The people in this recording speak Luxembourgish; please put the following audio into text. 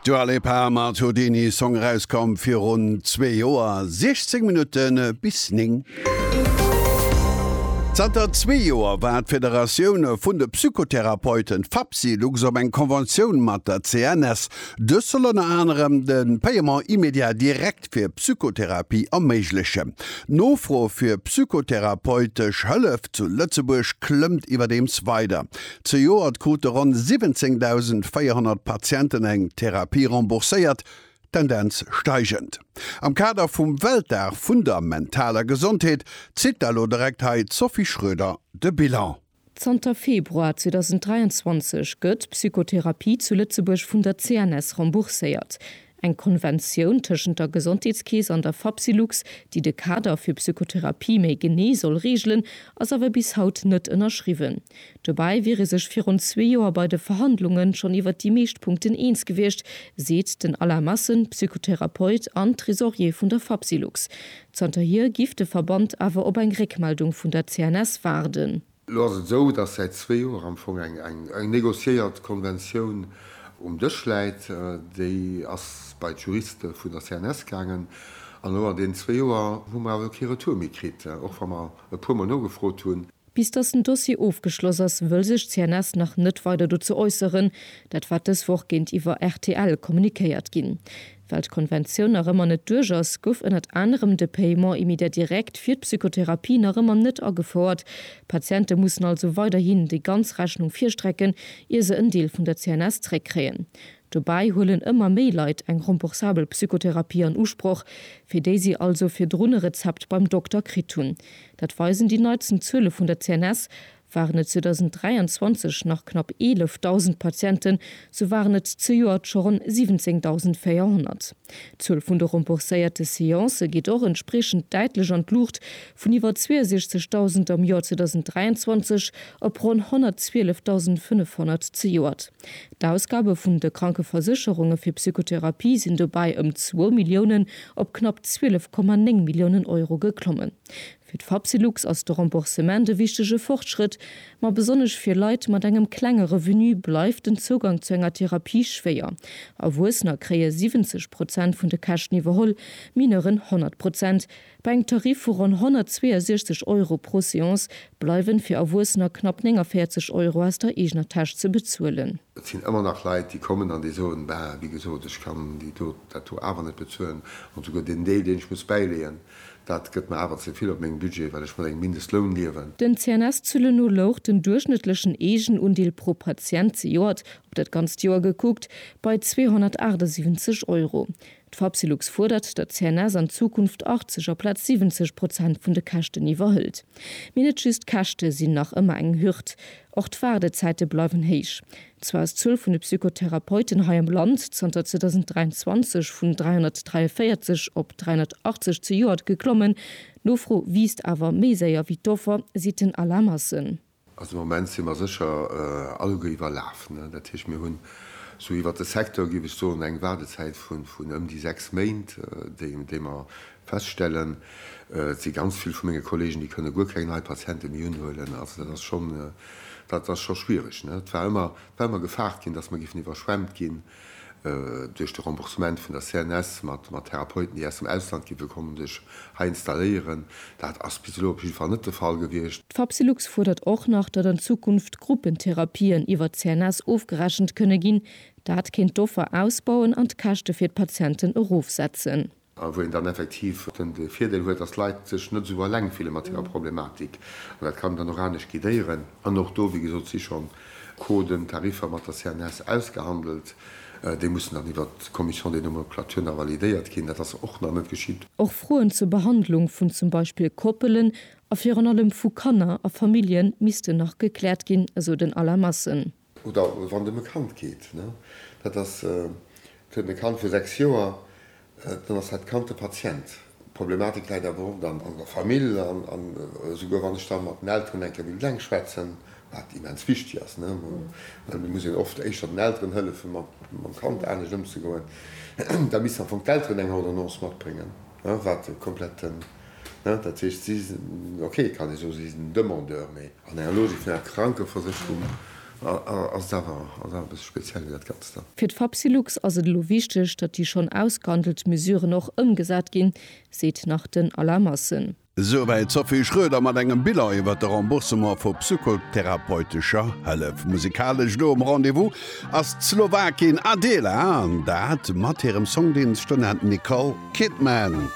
D'Dua Lipa mat Houdini, Song erauskomm virun zwee Joer, 16 Minutte bis 9. Zanter zwee Joer war d'Federatioun vun de Psychotherapeuten, FAPSI Lux, op eng Conventioun mat der CNS. Dës soll ënner anerem de Paiement immédiat direct fir Psychotherapie erméiglechen. D'Nofro fir psychotherapeutesch Hëllef zu Lëtzebuerg klëmmt iwwerdeems weider. Zejoert krute ronn 17.400 Patienten eng Therapie rembourséiert, Tendenz steigend. Am Kader vum Weltdag vun der mentaler Gesondheet zitt d'ALLO direkt hei d'Sophie Schroeder de Bilan. Zanter Februar 2023 gëtt d'Psychotherapie zu Lëtzebuerg vun der CNS rembourséiert. Eng Konventioun tëschent der Gesondheetskeess an der Fapsylux, déi de Kader fir Psychotherapie méi genee soll reegelen, ass awer bis haut net ënnerschriwwen. Dobäi wier ee sech virun zwee Joer bei de Verhandlunge schonn iwwer déi meescht Punkten eens gewiescht, seet den Alain Massen, Psychotherapeut an Tresorier vun der Fapsylux. Zanterhier giff de Verband awer op eng Réckmeldung vun der CNS waarden. Elo ass et esou, dass säit zwee Joer am Fong eng negociéiert Konventioun um Dësch läit. Déi ass bei d'Juriste vun der CNS gaangen. An elo an deenen zwee Joer hu mer awer kee Retour méi kritt, och wa mer e puer Mol nogefrot hunn. Bis dass den Dossier ofgeschloss ass, wëll sech d'CNS nach net weider dozou äusseren. Dat war dës Woch géintiwwer rtl kommunikéiert ginn. Well d'Konventioun nach ëmmer net duerch ass, gouf ënnert anerem de Paiement immédiat direct fir d'Psychotherapie nach ëmmer net agefouert. D'Patiente mussen also weiderhin déi ganz Rechnung virstrecken, ier se en Deel vun der CNS zréckkréien. Dobäi huelen ëmmer méi Leit eng remboursabel Psychotherapie an Usproch, fir déi si also virdrun e Rezept beim Dokter kritt hunn. Dat weisen déi neitsten Zuele vun der CNS. Waren et 2023 nach knapp 11.000 Patienten, sou waren et zejoert scho ronn 17.400. D'Zuel vun de rembourséierte Seancë geet och entspriechend däitlech an d'Luucht, vun iwwer 62.000 am Joer 2023 op ronn 112.500 zejoert. D'Ausgabe vun de Krankeversécherunge fir Psychotherapie sinn dobäi ëm zwou Milliounen op knapp 12,9 Milliounen Euro geklommen. Fir d'Fapsylux ass de Remboursement e wichtege Fortschrëtt, ma besonnesch fir Leit mat engem klenge Revenu bleift den Zougang zu enger Therapie schwéier. Erwuessener kréie 70 Prozent vun de Käschten iwwerholl, Mineuren 100 Prozent. Bei engem Tarif vu ronn 162 Euro pro Seance bleiwen fir Erwuessener knapp 49 Euro aus der eegener Täsch ze bezuelen. Et sinn ëmmer nach Leit, déi kommen an déi soen, Bah, wéi gesot, ech kann déi do, dat do awer net bezuelen, an souguer deen Deel, deen ech muss bäileeën, Dat gëtt mer awer ze vill op mengem Budget, well ech vun engem Mindestloun liewen. Den CNS-Zëlle no louch den duerchschnëttlechen Eegenundeel pro Patient, zejoert op dat ganzt Joer gekuckt, bei 278 Euro. D'Fapsylux fuerdert, datt d'CNS an Zukunft 80 aplaz 70 Prozent vun de Käschten iwwerhëlt. Mee net just d'Käschte sinn nach ëmmer eng Hürd, och d'Waardezäite bleiwen héich. Zwar ass d'Zuel vun de Psychotherapeuten hei am Land zanter 2023 vun 343 op 380 zejoert geklommen, d'Nofro wiisst awer méi séier wéi d'Offer, seet den Alain Massen. Also am Moment si mer sécher alleguer iwwerlaf. Dat heescht, mir hunn esou iwwert de Secteur, géif ech soen, eng Waardezäit vun ëm déi sechs Méint, déi mer feststellen. Et si ganz vill vu menge Kollegen, déi kënne guer keng nei Patiente méi unhuelen. Also dat ass schonn, dat ass scho schwiereg. Et war ëmmer, war ëmmer gefaart ginn, datt mer géifen iwwerschwemmt ginn. Duerch de Remboursement vun der CNS mat Therapeuten, déi aus dem Ausland gi wëll kommen, sech hei installéieren, dat ass bis elo op jidde Fall net de Fall gewiescht. D'Fapsylux fuerdert och nach, datt an Zukunft Gruppentherapien iwwer d'CNS ofgerechent kënne ginn. Dat kéint d'Offer ausbauen an d'Käschte fir d'Patienten erofsetzen. A wou een dann effektiv de Virdeel huet, dass d'Leit sech net esou eleng fille mat hirer Problematik. An dat kann een dann och anescht guidéieren. An och do, wéi gesot, si schonn Coden, Tariffer mat der CNS ausgehandelt. Déi mussen dann iwwert d'Commission des nomenclatures nach validéiert ginn. Dat ass och nach net geschitt. Och Froen zur Behandlung vun zum Beispill Koppelen a virun allem vu Kanner a Famillje missten nach gekläert ginn, esou den Alain Massen. Oder wann dem e Kand geet, dat ass, et huet e Kand vu 6 Joer, dann ass dat Kand de Patient. D'Problematik läit awer oft an der Famill. An esouguer wann ech da mat den Elteren eng Kéier wéilt eng schwätzen, wat immens wichteg ass, well et muss een oft éischter den Elteren hëllefen, mam Kand anescht ëmzegoen, da missten am Fong d'Elteren eng Ordonnance matbréngen, wat komplett Hein, dat heescht, si sinn, ok, kann ee soen, si sinn Demandeur, mee an enger Logik vun enger Krankeversécherung ass et awer, ass awer e bësse speziell wéi dat Ganzt da. Fir d'Fapsylux ass et elo wichteg, datt déi schonn ausgehandelt Mesuren och ëmgesat ginn, seet nach den Alain Massen. Souwäit d'Sophie Schroeder mat engem Bilan iwwert de Remboursement vu psychotherapeutescher Hëllef. Musikalesch do um Rendez-vous ass d'Slowakin Adela, an dat mat hirem Song, dee Stoned Nicole Kidman.